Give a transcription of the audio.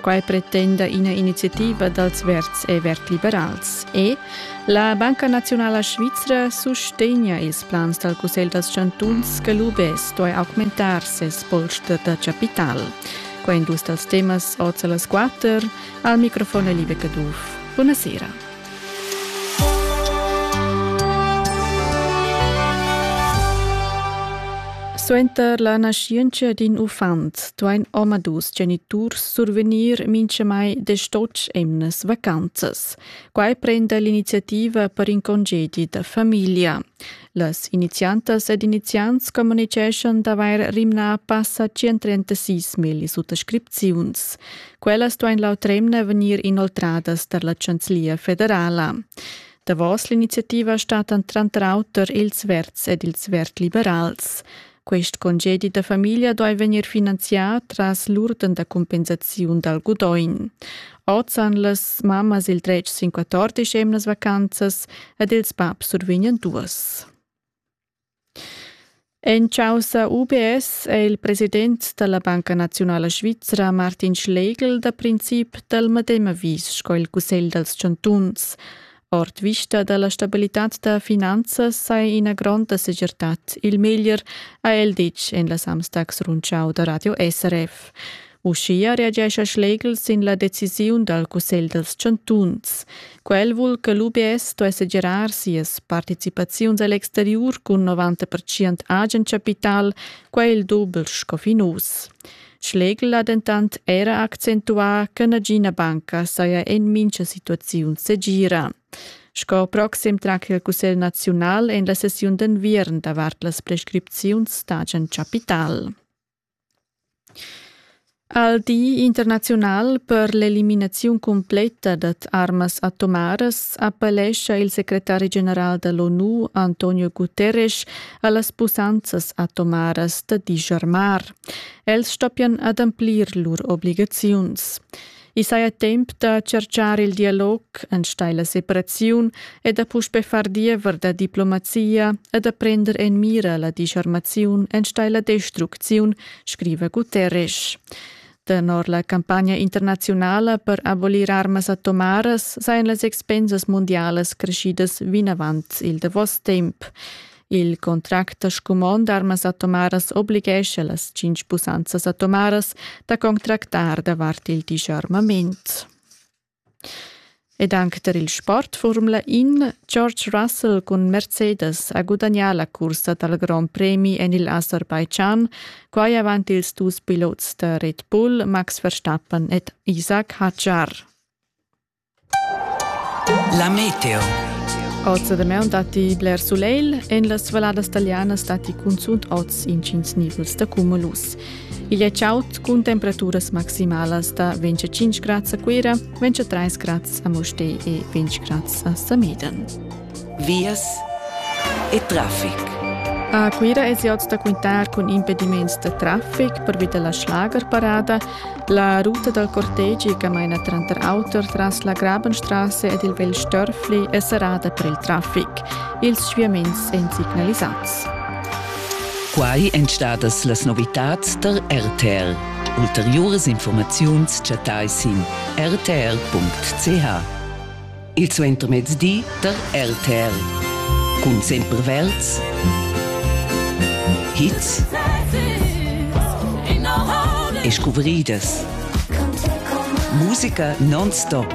Quai pretenda ina iniziativa dals Verds e Verd-liberals. E la Banca Nazionala Svizra sustegna ils plans dal Cussegl dals chantuns che l'UBS duai augmentar ses post da capital. Qua in dus dals temas oz a las 4. Al microfon è Liebe Caduff. Buonasera. Suenter la naschientscha d'in uffant duain omadus geniturs survegnir mintgamai desch emnas vacanzas. Quai prenda l'iniziativa per in congedi da famiglia. Las iniziantas ed iniziants communiceschan d'avair rimnà passa 136 milli suttascripziuns. Quellas duain l'autremna vegnir inoltradas tar la Chanzlia federala. Davos l'iniziativa statan tranter auter ils Verds ed ils Verd-liberals. Quest congedi da famiglia doi vegnir finanzià tras l'urden da compensaziun dal gudogn. Oz han las mammas il dretg sin 14 emnas vacanzas ed ils babs survegnan duas. En causa UBS è il president da la Banca Nazionala Svizra Martin Schlegel da princip dal medem avis sco il Cussegl dals chantuns. Ord vista da la stabilitad da finanzas sai ina gronda segirtad. Il meglier ha el ditg en la Samstags Rundschau da Radio SRF. Uschia reagescha Schlegel sin la decisiun dal Cussegl dels Chantuns. Quel vul che l'UBS sto segirar sias participaziuns a l'exteriur cun 90% agen capital, quai il dubel sco fin uss. Schlegel ha dentant era accentuà che nagina banca saja en mintga situaziun segira. Sco proxim tratg il Cussegl naziunal en la sessiun d'enviern davart las prescripziuns d'agent capital. Al Di internaziunal per l'eliminaziun cumpletta dad armas atomaras appellescha il secretari general da l'ONU Antonio Guterres a las pussanzas atomaras da digermar. Els stoppian ademplir lur obligaziuns. I saja temp da tscherchar il dialog enstagl la separaziun e da puspe far diever da diplomazia e da prender en mira la disarmaziun enstagl la destrucziun, scriva Guterres. Tenor la campagna internaziunala per abolir armas atomaras sajan las expensas mundialas creschidas vinavant il davos temp. Il contract da scumond armas atomaras oblighescha las cinc pussanzas atomaras da contractar davart il disarmament. Ed anche per il sport Formula In, George Russell con Mercedes ha gudagnà la cursa dal Grand Premi en il Aserbaidschan, quai avant ils dus pilots da Red Bull Max Verstappen ed Isaac Hadjar. La meteo. Oz da maun datti bler sulegl. En las valladas talianas datti cunzunt oz intgins nivels da cumulus. Igl è chaud cun temperaturas maximalas da 25 grads a Cuira, 23 grads a Mustér e 20 grads a Sameden. vias e traffic. A Cuira es ot da quintar cun impediments da traffic pervi da la schlagerparada. La ruta dal cortegi che maina tranter auter tras la Grabenstrasse ed il Vel Störfli è serrada per il traffic. Ils sviaments èn signalisats. Quai èn stadas las novitads tar RTL. Ulteriuras informaziuns chattai sin rtl.ch. il suentermezdi tar RTL. Cun sempre Welts. Hits e scuvridas. Musica non-stop.